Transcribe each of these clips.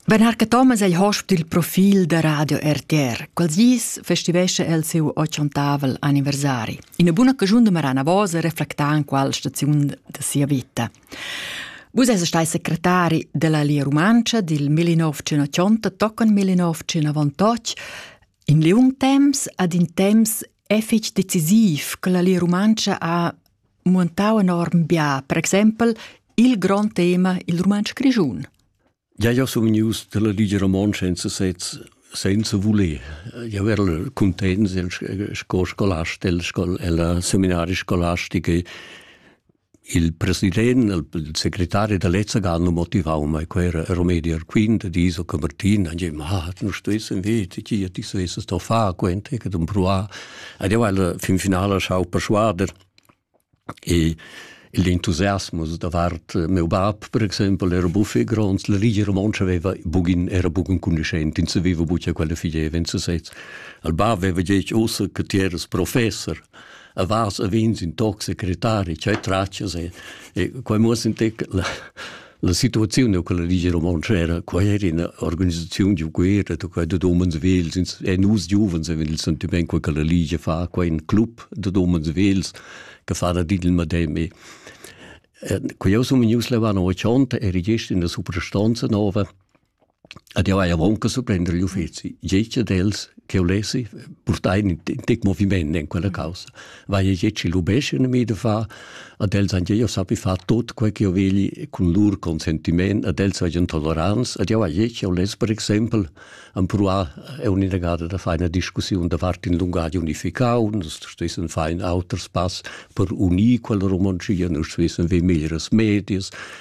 Benharca Thomas ei hosp dil profil da Radio RTR. Quels dis festivescha el siu ochontavel anniversari. Ina buna cagiun de Marana Vosa reflecta en qual staziun de sia vita. Vus eis stai secretari della Lia Rumantscha dil 1980 toccon 1998 in liung temps ad in temps effic decisiv che la Lia Rumantscha ha muentau enorm bia, per exempel il grond tema il rumantsch grischun. Ja, ja sun vegnius dalla Ligia Romontscha in sesez senza voler. Io ero content sco scolast del scol, ella seminaria scolastica il president, il segretario dell'Ezza hanno motivau mai, quel era Romediar Quint, di so Martin, e ma, ah, non stessi vedi, chi ti stessi sto fa, quent, che dum proa, Ed jau al fin finala schau perschuader e il entusiasmus davart eh, meu bab, per exempel, era buffe grons, la rigia romontscha aveva bugin, era bugen cunischent, ins aveva buca quella figeva in sesez. Al bab aveva detg ossa che ti eras professor, a vas a vins in toc secretari, cioè traccias e, e quai muss in tec la, La situaziun co la Ligia Romontscha era quai era ina organisaziun giu guerra da quai dad umens vels e nus giuvens avevamo il sentiment che la Ligia fa quai in club dad umens vels che fa da il medem Quei eu sun vegnius levà no 80 eri gest in la suprastanza nova Ad jau hai aunc surprender igl uffeci. Gec ad els che ulessi purtar in tec moviment en quella caussa. Vai e gec lubescen mi da far, ad els han jau sappi far tot quei che jo vegli cun lur consentiment, ad els vegien tolerants, ad jau hai gec uless per exempel am pruar un'inagada da far una discussiun davart in lungadi unificau, nus stessen far in auter spass per unir quella romontschia, nus stessen ve meglieras medias,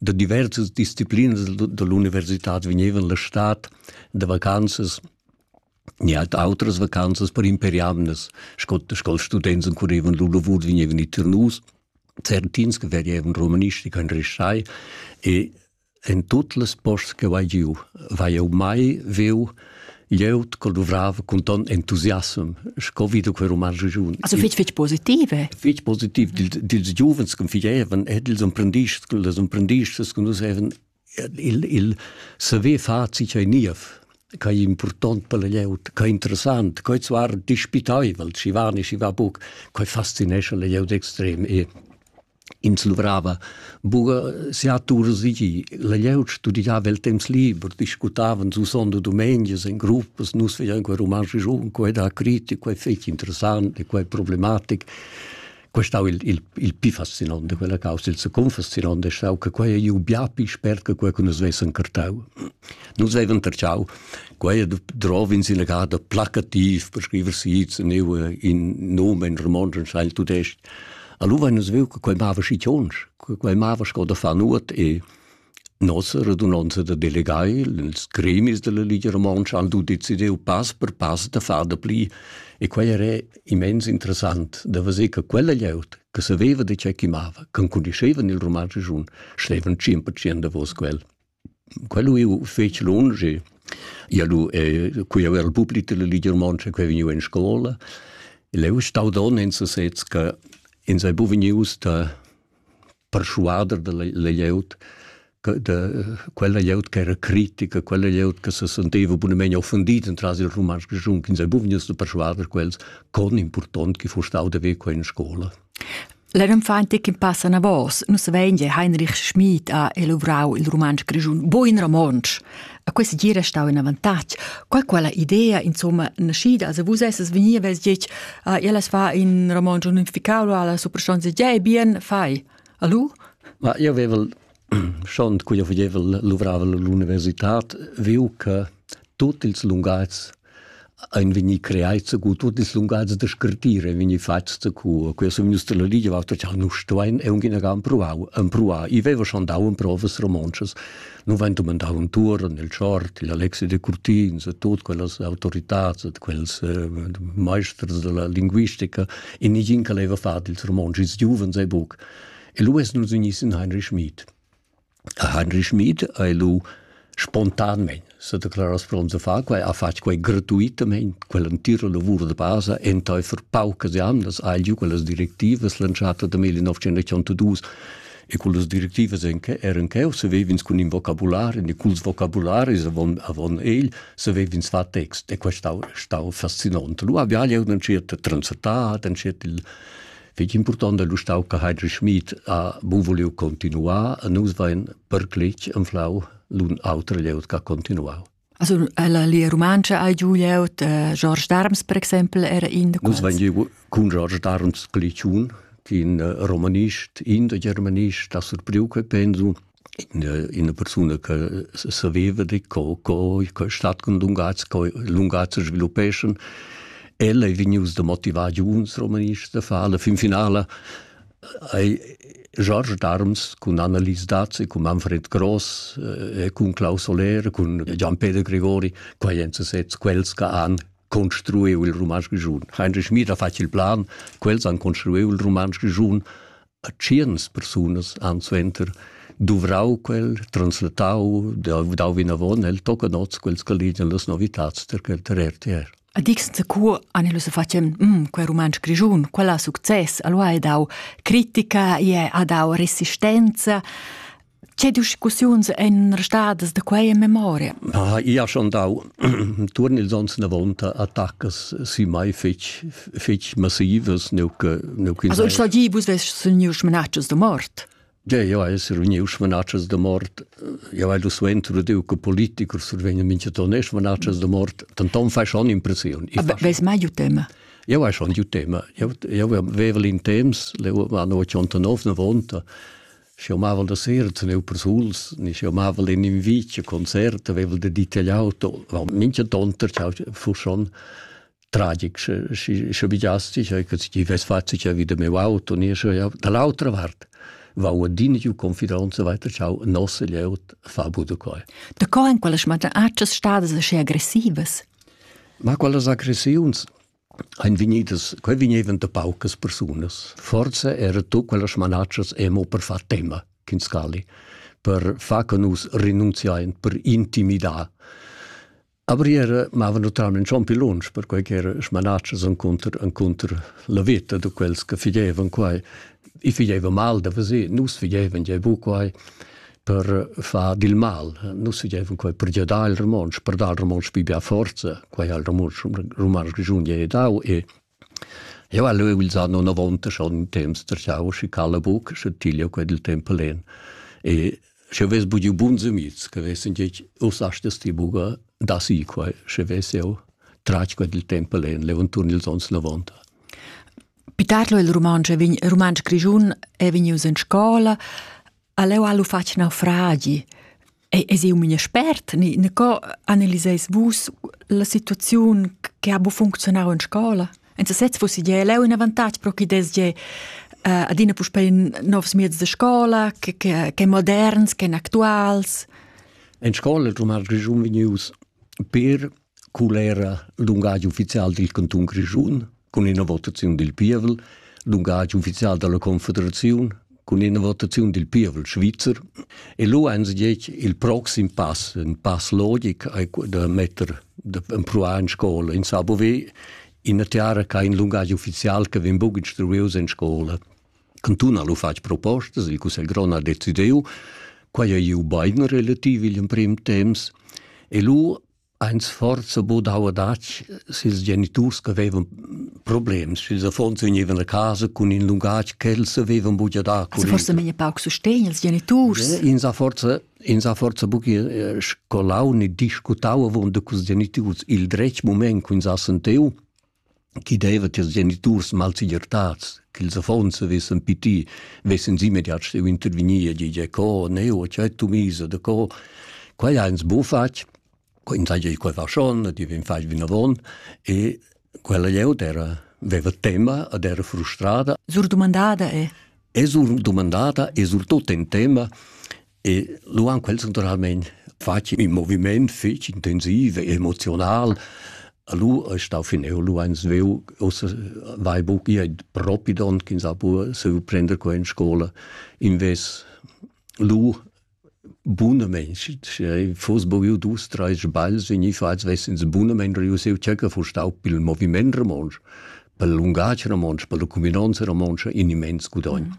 da diversas disciplinas da l'universitad vegnevan la stad da vacanzas ni halt outras vacanzas per imperiamnas, sco sco students currevan lur lavur vegnevan i Ternus, certins che vegevan romanistica in Restai e en tut les posts che vai giu, vai jau mai veu Glieud col duvrava cun ton entusiasm, sco vi du quei roman regiun. Also fitg fitg positive. Fitg positiv dils dil giuvens che fievan e dils imprendists, dils imprendists che nus haven il il saver far sich ei niev che è important per la glieud, che è interessant, che zwar dispitaivel, ci va ne ci va buc, che fascinesce la glieud extrem e Ins luvrava buca sia tur segir. La glieud studiava el temps liber, discutavan susond e dumenias en gruppas, nus vegian quei romansch giun, quei da critic, quei fetg interessant e quei problematic. Quei stau il, il, il pi fascinante, quella causa, il secunfascinante, è stau che quei ei bia pi spert che quei che nus vessen cartau. Nus vevan terciau, quei drov in sina gada placativ per scriver sits, in nomen romansch, in scheil tudestg. Allora vein nus viu che quei mava schi tschonsch, che quei mava sco da far nuot e nossa radunonza da delegai, ils gremis della Ligia Romontscha han tu decidiu pass per pass da far da pli e quei era immens interessant da vedere che quella glieud che saveva di che chi mava, che conoscevan il roman grischun, stevan 100% davos quel. Quel eu fetsch lunsch e ia lu e quei aver il public della Ligia Rumantscha che è vegniu en scola. El eu stau don in sesez che ins ei buca vegnius da perschuader dalla la glieud che da quella glieud che era critica, quella glieud che se senteva bunamein offendida entras il rumantsch grischun, ins ei buca vegnius da perschuader quels con impurtont che fu stau da ver quei in scola. La rinfante ch'in passa anavos, nus vein gia Heinrich Schmid ha elavorau il rumantsch grischun buin romontsch. A questa gira stau in avantatg. Qual quella idea, insomma, naschida, se vus esses vegni vess ditg, ah, ellas fa in romontsch unificau, alla superstonza, ja, bien, fai. Alu? Ma io avevel Schont quia vegnevel luvravel l'università viu che tuot ils lungatgs ein vegni creai cu tuot ils lungatgs da scrittir ein vegni fats cu quia sun gnüs la ligia vatta cha nus stuein e aunc inaga empruau empruar. I veva schon dau emprovas romontschas. Nu vain dumandau intuorn il Tschort, il Alexi de Curtins e tuot quellas autoritats ed quels maesters della linguistica e nigin che leva far dils romontschs. Ils giuvens ei buc. E lu es nus ignis in Heinrich Schmid. Heinrich Schmid ei lu spontanmein s'ha declaras pront da far quei, ha fatg quei gratuitamein, quell'entira lavur de basa, enteifer paucas jamnas ha giu quellas directivas lanciata da 1982 e cullas directivas eran cheu savev'ins cun in vocabulari e culs vocabularis avon avon egl savev'ins far text e quest stau stau fascinant. Lu havia jeu entschiet de transetar, entschiet il Fich important è l'ustau che Heidrich Schmid ha buvuliu continuar e nus vain perclich anflau l'un auter glieud che ha continuau. Also la lia romancha ha giu glieud, eh, George Darms per exempel era in da quels. Nus vain giu cun George Darms Cliciun, in eh, romanist, in da germanist, da surpriu che pensu, ina persuna che saveva di co co co stat cun lungatgs co lungatgs sviluppeschan ella ei vegnius da motivar giuns romanists da far la fin finala ei George Darms cun Annelies Dazzi, cun Manfred Gross e cun Klaus Soler, cun Gian-Peter Gregori, quei ein sezs quels che han construiu il romansch grischun. Heinrich Schmid ha fatg il plan, quels han construiu il romansch grischun a tscherns persunas han suenter duvrau quel, translatau, dau vinavon el tocca nots quels che ligian las novitads per quel ter RTR. A dixen secu Annelus facem, mm, quel romansch grigiun, quella success, allora ha dau critica, e ha dau resistenza, Che discussiuns ein restadas da quei in memoria? Ah, io ha schon dau turn ils ons na vonta attacas si mai fetg fetg massivas nuke nuke Also ich sage, vus west sind new schmenatschas de mort. Ja, ja, essere uniu schmenatschas de mort. Ja, weil du suentro de che politiker survegna mincha tonne schmenatschas de mort, dann dann fai schon impression. Aber wes mai ju tema? Ja, war schon du Thema. Ja, ja, wir wävel in Thems, le war no 89 na vonta. Schi amavan da sera tener persuls, ni schi amavan in invit a concert, avevan de detagliau mincha tonter, ciao, fu schon tragic, schi sche bigiasti, sche ti vess fatto che vide meu auto, ni sche ja dall'altra vart va adina giu confidanza weiter ciao nosse leut fa bude coi. Da co en quella schmata accias stadas aschi aggressivas? Ma quelle agressiuns ein vegnidas, quei vegnevan da paucas persunas. Forza era tu quellas smanatschas emo per far tema, Kinskali, per far che nus renunziain, per intimidar. Aber era mava naturalmente schon più lunsch, per quei che era smanatschas encontr, encontr la vita da quels che figevan quai. I figeva mal da vesir, nus figevan je bu quai. per far dil mal. Nus dieven quei per giadar il romontsch, per dar il romontsch pi bia forza, quei ha il romontsch romansch grischun gli dau e Io ha leu ils anno 90 schon in temps terciau schi cala buc, sche tiglio quei del tempo len. E sche ves bugiu bun zemiz, che vessen gec us astes ti buga da si quei, sche ves eu trac quei del tempo len, levanturn ils ons 90. Pitarlo il romansch vegn romansch grischun è vegnius in scola, Aleu ha lu fatg naufragi. E es eu mia spert, ni, ni co analiseis vus la situaziun che ha bu funzionau in scola? En sesez fussi gie leu in avantatg pro chi des gie uh, adina puspei novs mieds de scola, che, che, che moderns, che actuals. En scola il rumar grischun vegnius per Cul era l'ungagi ufficial dil cantun Grischun cun ina votaziun dil pievel, l'ungagi ufficial dalla Confederaziun cun ina votaziun dil pievel svizzer e lu ein se detg il proxim pass, in pass logic ei da metter da empruar in scola in Sabove, ina tiara che ha in lungagi ufficial che vegn buca instruius en scola. Cantun ha lu fatg propostas, il Cussegl grond ha decidiu, quei ei iu bein relativ igl emprem temps e lu ein sforzo budau adatg sils geniturs che vevan problems, sils affons vegnevan a casa cun in lungatg ch'els avevan buca da curriculum. Forse meglio pauc sustegn als geniturs. Eh, ins ha forse ins ha forse buca scolau né discutau avon da cus geniturs il dretg moment che ins ha sentiu chi deva tiers geniturs malsegirtats ch'ils affons vessen piti, vessen immediat steu intervegnir e dir co, ne o c'è tu misa de co. Quai ha ins bu fatg, co ins ha quei faschon, ti vegn fatg vinavon e quella glieud era veva tema ed era frustrada. Sur dumandada è? È sur dumandada e surtut in tema E lu han quels naturalmein fatg in moviment fetg intensiv e emotional. Lu è stau fineu, lu ein sveu, ossa vai buc gie propi don ch'in sa pur seu prender qua in scola. Invés lu bunamente, se foss boviu dus, drei sbagls vegni fatgs, vessens bunamente riuseu cerca fu stau pil moviment romontsch, per lungatg romontsch, per la cuminanza romontsch in immens gudogn. Mm.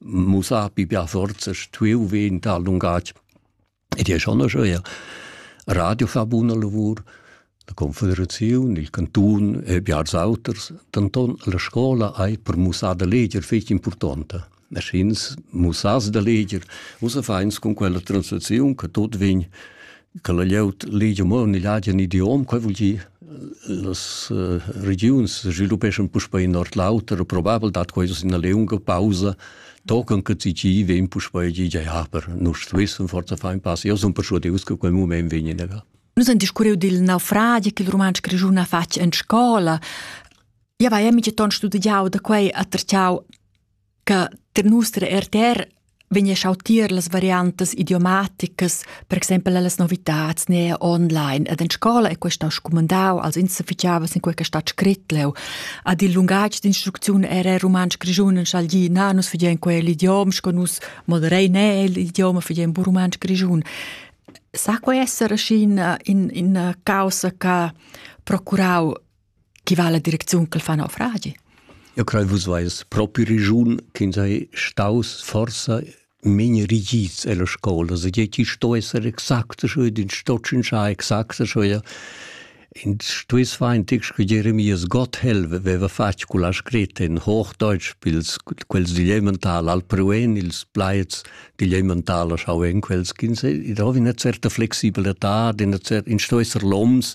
mussà pi bia forza stuiu ver in tal lungatg. Ed è schon eir Radio fa buna lavur, la Confederazione, il Canton e biars auters, denton la scola ei per mussar da leger fetg importante. Maschins mussas da leger, usa feins con quella translazione che tot vegn che la glieud legia mo en igl agen idiom, quei vul dir las uh, regiuns sviluppeschan puspei in ord l'auter, probabel dat quei ina lunga pausa, tocan che ci ci vegn puspei gigia, ja, per nus stuessem forza fein pass. Io son persuadius che quel moment vegn in egal. Nus han discurriu dil naufragi che il romansch grischun ha fatg en scola. Ja, vai, amici ton studiau da quei a terciau che ter nus der RTR vegn schau tier las variantas idiomaticas, per exempel las novitats ne online ed en scola e questo scumandau, also insufficiava sin quei stat scrit leu. Ad il lungatg d'instrucziun era romansch grischun en schalgi na nus figien quel idiom, sco nus moderei ne l'idioma figien bu romansch grischun. Sa quei essere in in in causa che procurau Chi va la direcziun ch'el fa naufragi? Eu crei vus vais propi regiun ch'ins ha staus forsa mein rigid ella scola, se che chi sto esser exakt scho ed in sto tschinschar exakt scho ja. In stuess feintig sche Jeremias Gotthelf veva fatg culla scretta in Hochdeutsch pils quels digl elemental al pruen ils plaids digl elemental schau en quels ch'ins ed ho una certa flexibletà, in cer in sto esser loms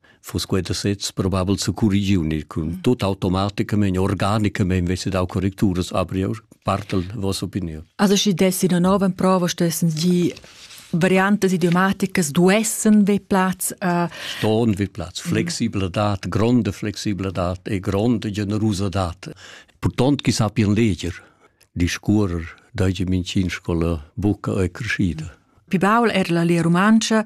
Fos queta sez probabel zu corrigiunir cun tot automaticamain, organicamain vesse dau correcturas, aber io partel vossa opinion. Also schi dessi una nova prova stessens die variantes idiomaticas duessen vi Platz äh, Ston vi Platz flexibla dat gronde flexibla dat e gronde generosa dat Purtont chi sapien leger discurrer dage mincin scola buca e crescida Pi baul er la lia rumantscha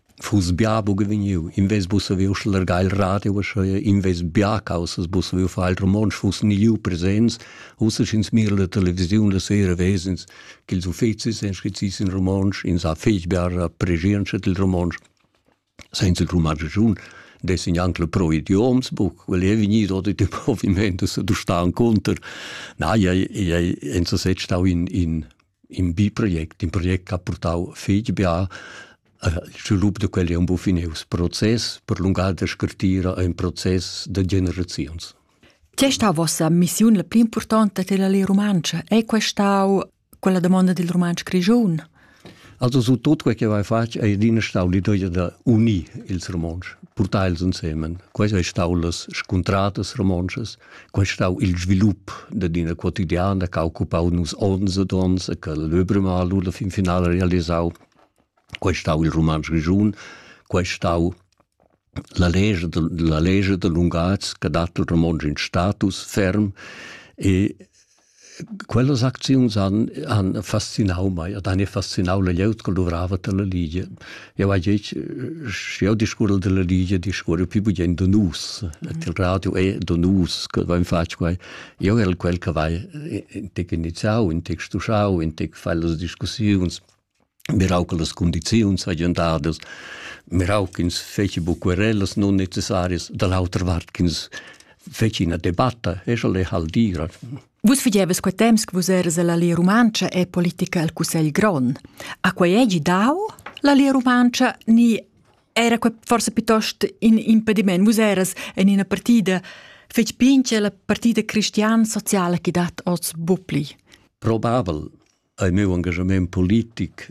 fuss bia buca vegniu, invés buca saver uschlargar il radio, uschia invés bia caussas buca saver far il romontsch, fuss ni liu presents, ussa sch'ins mira la televisiun la sera vesens ch'ils uffecis ein scrizis in romontsch, ins ha fetg bia pregientscha dil romontsch. Senza il romontschun dessin anche le pro idioms buc, quel è vegnido oder di provimento sa du sta conter. Na, ja, ja, en so set stau in, in in bi project, in project che ha portau fetg bia il svilup da quel è un po finius. Process per lungar da scartira è un process da generazions. Che sta vossa missione la pli importante della lei romancia? È questa quella domanda del romancio grigion? Also su tot quel che vai fatg è adina stau l'idea da unir ils romanci, portar els insieme. Questo è stato las scontratas romances, Quel stau il svilup da d'ina quotidiana che ha occupau nus onns ed onns e che l'Öbremal la fin finala realisau. Quel stau il Rumantsch Grischun, quel stau la legge, de, la legge de lunghaz che dat il romontsch in status ferm e Quellas acziuns han, han fascinau mei ed han fascinau la glieud che luvrava dalla Ligia. Jau hai detg, sche jau discurre dalla Ligia, discurre più bugen da nus. Et il radio è da nus che vain fatg quai. Io el quel che vai intec iniziau, intec stuschau, intec fai las discussiuns, mirau che las condiziuns hagien dadas, mirau ch'ins feci buc querellas non necessarias, da l'autra vart ch'ins feci ina debatta, e sche le hal dira. Vus fageves quei temps che vus eras all'Alia Rumantscha e politica al Cussegl Grond. A quei egi dau l'Alia Rumantscha ni era quei forse piuttosto in impediment? Vus eras en ina partida fec pince la partida cristian sociala che dat oz bupli. Probabel, ei meu engagement politic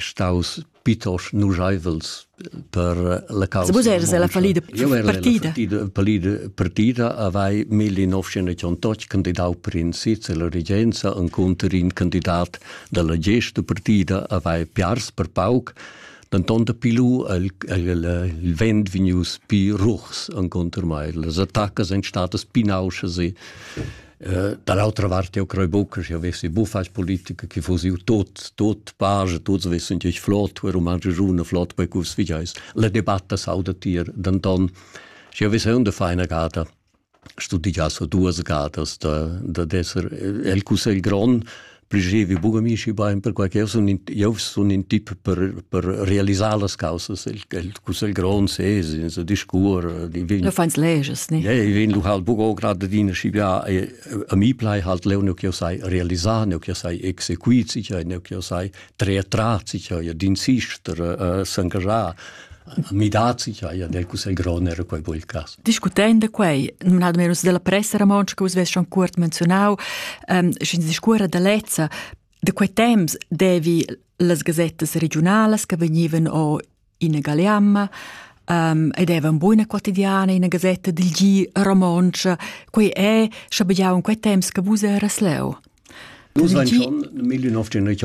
staus pitosch nuscheivels per la causa. Vus eres la palida partida. Palida partida avei 1988 candidau per in sitz e la regenza en conter in candidat dalla gesta partida avei piars per pauc denton da pilu el, el, il vent vegnius pi ruchs en conter mai. Las attacas ein statas pinausas e Eh, dall'altra vart io crei buca che avessi buffas politica che fosse io tot tot page tots wissen ich flot wer man june flot bei kus wie heißt le debatte sauda tier dann dann ich habe so eine feine gada studiato duas gadas da da desser el cusel gron Pligevi buca mi schi bein perquei che jeu sun in, jeu sun in tip per, per realisar las causas, el, el cussegl grond sez, in so discur, di vin. Du feins leges, ne? Ja, ich vin, du halt buca grad adina schi bia a mi plai halt leu neu che sai realisar, neu che sai exequit sicher, neu che sai treer trat sicher, ja din sister, uh, s'engagiar. Midaz jaja del Cussegl grond era quei bel cas. Discutend quei, nominado numerus della pressa romontscha che vus vess schon cuort menzionau, ähm, sch'ins discuora da lezza, da quei temps devi las gazettas regionalas che vegnivan o in Galeamma, um, ed evan buona quotidiana in gazetta del G romoncia, quei è, schabegiau in quei temps che vus eras leu. Nus ein schon 1990